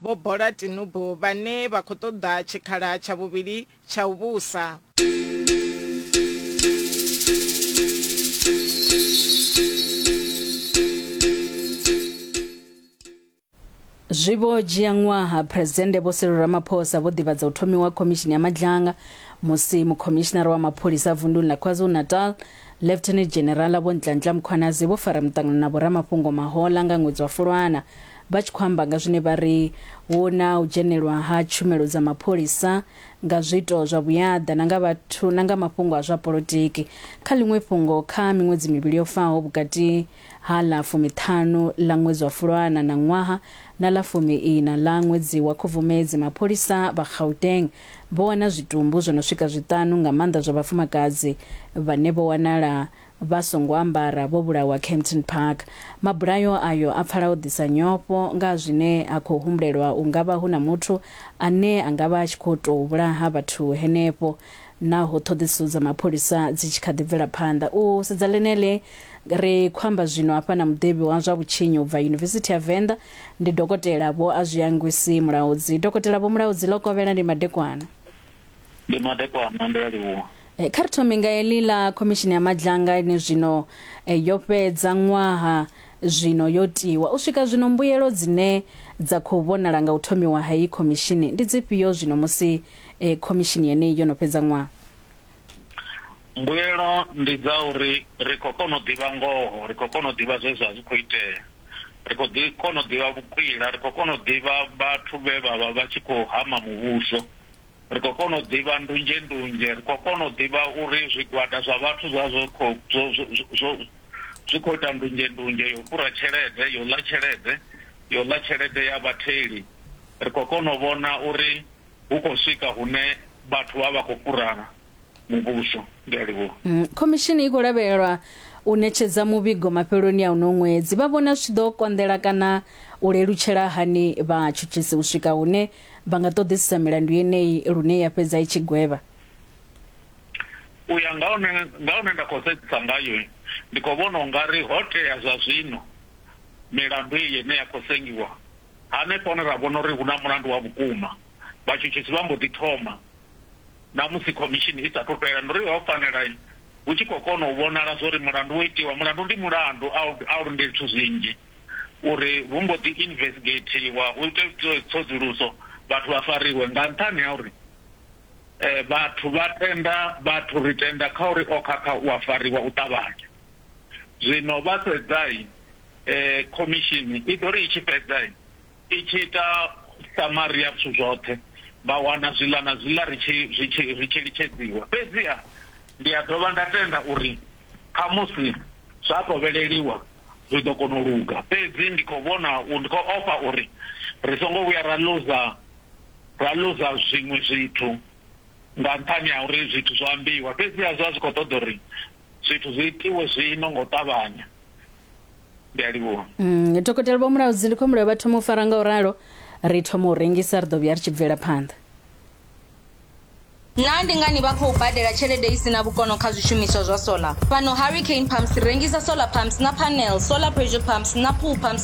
Vho Bola Tinubu vhane vha khou ṱoḓa tshikhala tsha vhuvhili tsha u vhusa. Zwi vho dzhia ṅwaha Phresidennde Vho Cyril Ramaphosa vho ḓivhadza u thomiwa ha Khomishini ya Madzhanga musi Mukhomishinara wa Mapholisa vunḓuni ḽa KwaZulu-Natal Lieutenant General Vho Nhlanhla Mkhwanazi vho fara muṱangano na vhoramafhungo Mahola nga ṅwedzi wa Fulwana vha tshi khou amba nga zwine vha ri hu na u dzhenelwa ha tshumelo dza mapholisa nga zwiito zwa vhuyaḓa na nga vhathu na nga mafhungo a zwa polotiki. Kha ḽiṅwe fhungo, kha miṅwedzi mivhili yo faho vhukati ha ḽa fumiṱhanu ḽa ṅwedzi wa Fulwana na ṅwaha na ḽa fumi-iṋa ḽa ṅwedzi wa Khubvumedzi, mapholisa vha Gauteng Vho wana zwitumbu zwo no swika zwiṱanu, nga maanḓa zwa vhafumakadzi, vhane vho wanala vha songo ambara vho vhulawa Kempton Park. Mabulayo ayo a pfala o ḓisa nyofho nga ha zwine ha khou humbulelwa u nga vha hu na muthu ane a nga vha a tshi khou tou vhulaha vhathu henefho, naho ṱhoḓisiso dza mapholisa dzi tshi kha ḓi bvela phanḓa. U sedza ḽeneḽi, ri khou amba zwino hafha na muḓivhi wa zwa vhutshinyi u bva Yunivesithi ya Venḓa, Ndi Dokotela Vho Azwiyangwisi Mulaudzi. Dokotela Vho Mulaudzi, ḽo kovhela ndi madekwana. Ndi madekwana, ndi a livhuwa. Eh, kha ri thome nga heḽi ḽa khomishini ya madzhanga ine zwino eh, yo fhedza ṅwaha zwino yo tiwa u swika zwino mbuyelo dzine dza khou vhonala nga u thomiwa ha iyi khomishini ndi dzifhio zwino musi eh, khomishini yeneyi yo no fhedza ṅwaha Mbuyelo ndi dza uri ri khou kona u ḓivha ngoho, ri khou kona u ḓivha zwe zwa zwi khou itea, ri khou ḓi kona u ḓivha vhukwila, ri khou kona u ḓivha vhathu vhe vha vha vha tshi khou hama muvhuso, ri khou kona u ḓivha ndunzhendunzhe, ri khou kona u ḓivha uri zwigwada zwa vhathu zwa zwo khou zwo zwo zwi khou ita ndunzhendunzhe yo fhura tshelede, yo ḽa tshelede, yo ḽa tshelede ya vhatheli. Ri khou kona u vhona uri hu khou swika hune vhathu vha vha khou fhura muvhuso. Ndi a livhuwa. Mm, khomishini i khou lavhelelwa u ṋetshedza muvhigo mafheloni a uno ṅwedzi vha vhona zwi tshi ḓo konḓela kana u lelutshela hani vhatshutshisi u swika hune vha nga ṱoḓisisa milandu yeneyi lune ya fhedza i tshi gwevha u ya nga hune nga hune nda khou sedzisa ngayo ndi khou vhona ungari ho tea zwa zwino milandu iyi ine ya khou sengiwa Hanefho hone ra vhona uri hu na mulandu wa vhukuma. Vhatshutshisi vha mbo ḓi thoma na musi khomishini i sa athu fhela. Ndo ri, Ho fanela hu tshi khou kona u vhonala zwa uri mulandu wo itiwa. Mulandu ndi mulandu, a u a u lindeli zwithu zwinzhi uri vhu mbo ḓi invesgeithiwa, hu itwe tsedzuluso, vhathu vha fariwe. Nga nṱhani ha uri vhathu vha tenda vhathu, ri tenda kha uri o khakha u a fariwa u ṱavhanya. Zwino vha sedza, khomishini i ḓo ri i tshi fhedza i tshi ita samari ya zwithu zwoṱhe, vha wana zwiḽa na zwiḽa ri tshi zwi tshi ri tshi litshedziwa. Fhedziha ndi a dovha nda tenda uri khamusi zwa kovheleliwa zwi ḓo kona u luga. Fhedzi ndi khou vhona, ndi khou ofha uri ri songo vhuya ra luza ra luza zwiṅwe zwithu nga nṱhani ha uri zwithu zwo ambiwa. Fhedziha zwa zwi khou ṱoḓa uri zwithu zwi itiwe zwino ngo ṱavhanya ndi a livhuwa mm, dokotela vho mulaudzi ndi khombela vha thoma u fara nga u ralo ri thoma u rengisa ri ḓo vhuya ri tshi bvela phanḓa naa ndi ngani vha khou badela tshelede i si na vhukono kha zwishumiswa zwa solar fhano hurricane pumps rengisa solar pumps na panel solar pressure pumps na pool pumps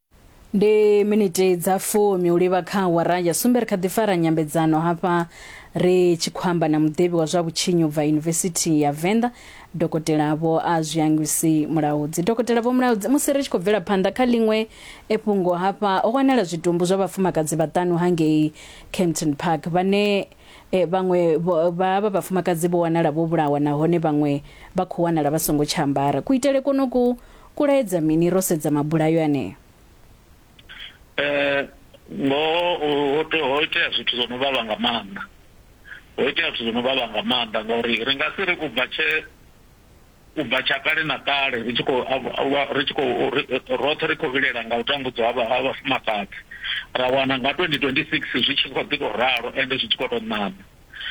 ndi miniti dza fumi u livha kha awara ya sumbe ri kha ḓi fara nyambedzano hafha ri tshi khou amba na muḓivhi wa zwa vhutshinyi ubva yunivesithi ya venḓa dokotela vho a zwiangwisi mulaudzi dokotela vho mulaudzi musi ri tshi khou bvela phanḓa kha ḽiṅwe efhungo hafha ho wanala zwitumbu zwa vhafumakadzi vhaṱanu hangei campton park vhane eh, vhaṅwe vho- vha vha vhafumakadzi vho wanala vho vhulawa nahone vhaṅwe vha khou wanala vha songo tsha ambara kuitele konoku Kulaedza mini ro sedza mabulayo aneo? Eh, ngoho ho te- ho itea zwithu zwo no vhavha nga maanḓa ho itea zwithu zwo no vhavha nga maanḓa ngauri ri nga si ri u bva tshe u bva tsha kale na kale ri tshi khou av- av- ri tshi khou ri- roṱhe ri khou vhilela nga u tambudzwa ha vha- ha vhafumakadzi ra wana nga 2026 zwi tshi khou ḓi tou ralo ende zwi tshi khou tou ṋaṋa